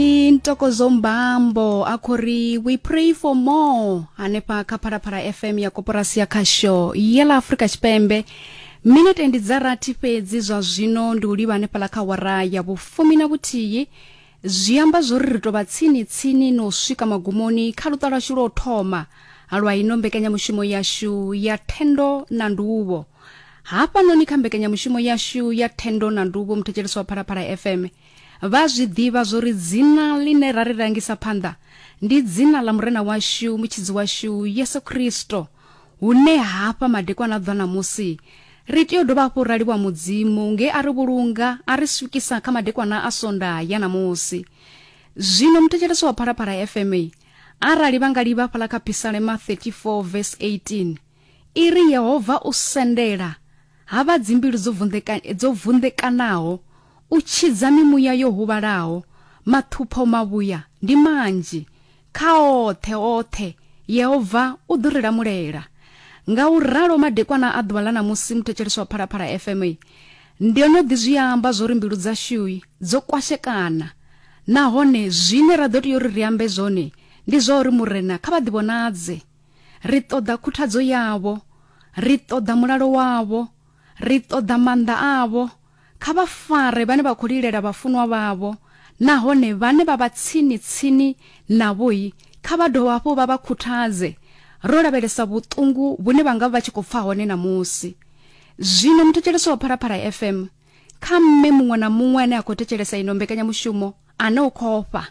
ndi ntokozo mbambo a khou ri we pray for more hanefha kha phalaphala fm ya koporasi ya khasho ye ḽa afurika tshipembe minete ndi dza rathi fhedzi zwa zwino ndi u livha hanefhaḽa kha wara ya vhufumi na vhuthihi zwi amba zwo ri ri tou vha tsini tsini na u swika magumoni kha luṱa lwashu lwa u thoma lwa ino mbekanyamushumo yashu ya thendo na nduvho hafhanoni kha mbekanyamushumo yashu ya thendo na nduvho muthetshelesi wa phalaphala fm Vha a zwi ḓivha zwo ri dzina ḽine ra ri rangisa phanḓa ndi dzina ḽa Murena washu, Mutshidzi washu, Yesu Kristo. Hune hafha madekwana a ḓwa ṋamusi, ri tea u dovha hafhu ra livhuwa Mudzimu nge a ri vhulunga a ri swikisa kha madekwana a Sondaha ya ṋamusi. Zwino muthetshelesi wa Phalaphala FM arali vha nga livha hafhaḽa kha Phisalema 34 vesi 18, I ri, Yehova u sendela ha vha dzimbilu dzo, vunḓeka, dzo vunḓekanaho, u tshidza mimuya yo huvhalaho, maṱhupho mavhuya ndi manzhi. Kha oṱhe, oṱhe, Yehova u ḓo ri lamulela. Ngauralo, madekwana a ḓuvha ḽa ṋamusi, muthetshelesi wa Phalaphala FM, ndo no ḓi zwi amba zwo ri mbilu dzashu dzo kwashekana nahone zwine ra ḓo tea uri ri ambe zwone ndi zwa uri Murena kha vha ḓivhonadze. Ri ṱoḓa khuthadzo yavho. Ri ṱoḓa mulalo wavho. Ri ṱoḓa maanḓa avho. Kha vha fare vhane vha khou lilela vhafunwa vhavho, nahone vhane vha vha tsini-tsini navho-i, kha vha dovhe hafhu vha vha khuthadze, ro lavhelesa vhuṱungu vhune vha nga vha vha tshi khou pfa hone ṋamusi. Zwino muthetshelesi wa Phalaphala FM, kha mme muṅwe na muṅwe ane a khou thetshelesa ino mbekanyamushumo ane u khou ofha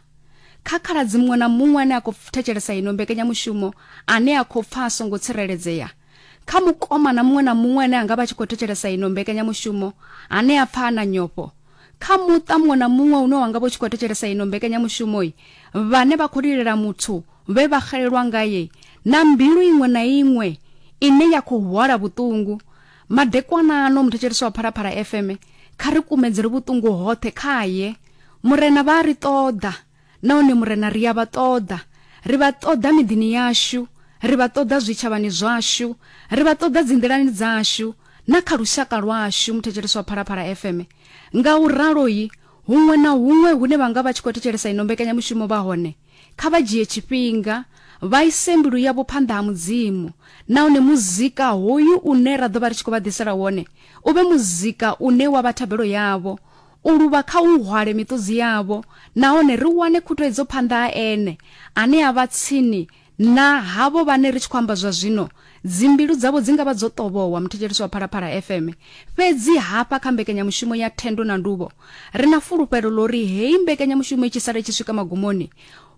kha khaladzi muṅwe na muṅwe ane a khou thetshelesa ino mbekanyamushumo ane a khou pfa a songo tsireledzea kha mukomana muṅwe na muṅwe ane a nga vha tshi khou thetshelesa ino mbekanyamushumo ane a pfa a na nyofho kha muṱa muṅwe na muṅwe une wa nga vha u tshi khou thetshelesa ino mbekanyamushumoi vhane vha khou lilela muthu vhe vha xelelwa ngaye na mbilu iṅwe na iṅwe ine ya khou hwala vhuṱungu Madekwana ano muthetshelesi wa Phalaphala FM kha ri kumedzele vhuṱungu hoṱhe khaye. Murena vha a ri ṱoḓa nahone murena ri a vha ṱoḓa. Ri vha ṱoḓa miḓini yashu, ri vha ṱoḓa zwitshavhani zwashu, ri vha ṱoḓa dzinḓilani dzashu na kha lushaka lwashu muthetshelesi wa Phalaphala FM. Nga u ralo-i, huṅwe na huṅwe hune vha nga vha tshi khou thetshelesa ino mbekanyamushumo vha hone, Kha vha dzhie tshifhinga vha ise mbilu yavho phanḓa ha Mudzimu, nahone muzika hoyu une ra ḓo vha ri tshi khou vha ḓisela wone u vhe muzika une wa vha thabelo yavho. U luvha kha u hwale miṱudzi yavho nahone ri wane khutuhedzo phanḓa ha Ene ane a vha tsini na havho vhane ri tshi khou amba zwa zwino Dzimbilu dzavho dzi nga vha dzo ṱovhowa, muthetshelesi wa Phalaphala FM. Fhedzi hafha kha mbekanyamushumo ya Thendo na Nduvho, ri na fulufhelo ḽa uri heyi mbekanyamushumo i tshi sala i tshi swika magumoni,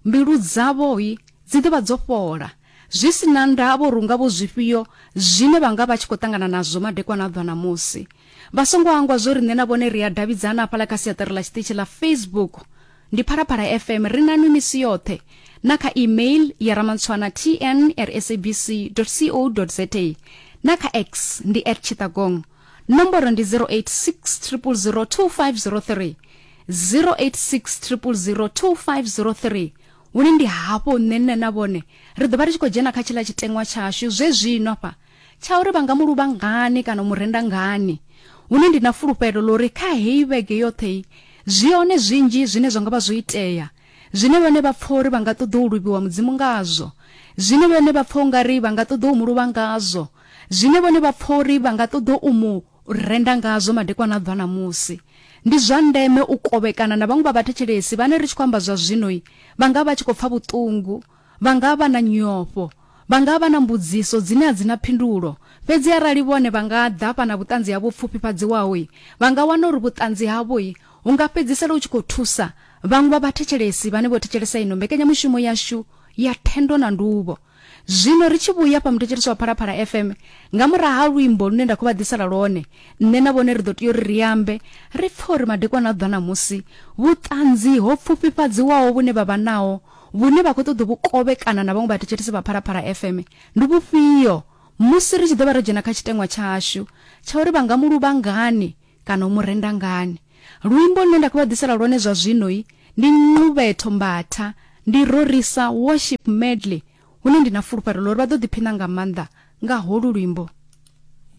mbilu dzavho dzi ḓo vha dzo fhola, zwi si na ndavha uri hu nga vho zwifhio zwine vha nga vha tshi khou ṱangana nazwo madekwana a ḓwa ṋamusi. Vha songo hangwa zwo ri nṋe na vhone ri a davhidzana hafhaḽa kha siaṱari ḽa tshiṱitshi ḽa Facebook. ndi phalaphala fm ri nanwi misi yoṱhe na kha email ya ramantshwana tn at sabc co za na kha x ndi at chitagong nomboro ndi 086 0002503 086 0002503 hune ndi hafho nṋe nṋe na vhone ri ḓo vha ri tshi khou dzhena kha tshiḽa tshiteṅwa tshashu zwe zwino fha tsha uri vha nga mu luvha ngani kana u mu renda ngani hune ndi na fulufhelo ḽa uri kha heyi vhege yoṱhe zwi hone zwinzhi zwine zwa nga vha zwo itea zwine vhone vha pfa uri vha nga ṱoḓa u luvhiwa mudzimu ngazwo zwine vhone vha pfa ungari vha nga ṱoḓa u mu luvha ngazwo zwine vhone vha pfa uri vha nga ṱoḓa u mu renda ngazwo madekwana a bva ṋamusi ndi zwa ndeme u kovhekana na vhaṅwe vha vhathetshelesi vhane ri tshi khou amba zwa zwinoi vha nga vha tshi khou pfa vhuṱungu Vha nga vha na nyofho. Vha nga vha na mbudziso dzine a dzi na phindulo. Fhedzi arali vhone vha nga ḓa vha na vhuṱanzi havho vhu pfufhifhadziwaho, vha nga wana uri vhuṱanzi havho hu nga fhedzisela hu tshi khou thusa vhaṅwe vha vhathetshelesi vhane vho thetshelesa ino mbekanyamushumo yashu ya Thendo na Nduvho. Zwino ri tshi vhuya fha muthetshelesi wa Phalaphala FM, nga murahu ha luimbo lune nda khou vha ḓisela lwone, nṋe na vhone ri ḓo tea uri ri ambe, ri pfe uri madekwana a ḓuvha ṋamusi vhuṱanzi ho pfufhifhadziwaho vhune vha vha naho vhune vha khou ṱoḓa u vhu kovhekana na vhaṅwe vhathetshelesi vha Phalaphala FM ndi vhufhio musi ri tshi ḓo vha ro dzhena kha tshiteṅwa tshashu tsha uri vha nga mu luvha ngani kana u mu renda ngani. Luimbo lune nda khou vha ḓisela lwone zwa zwino-i ndi Nqubetho Mbatha, ndi Rorisa Worship Medley hune ndi na fulufhelo ḽa uri vha ḓo ḓiphina nga maanḓa nga holu luimbo.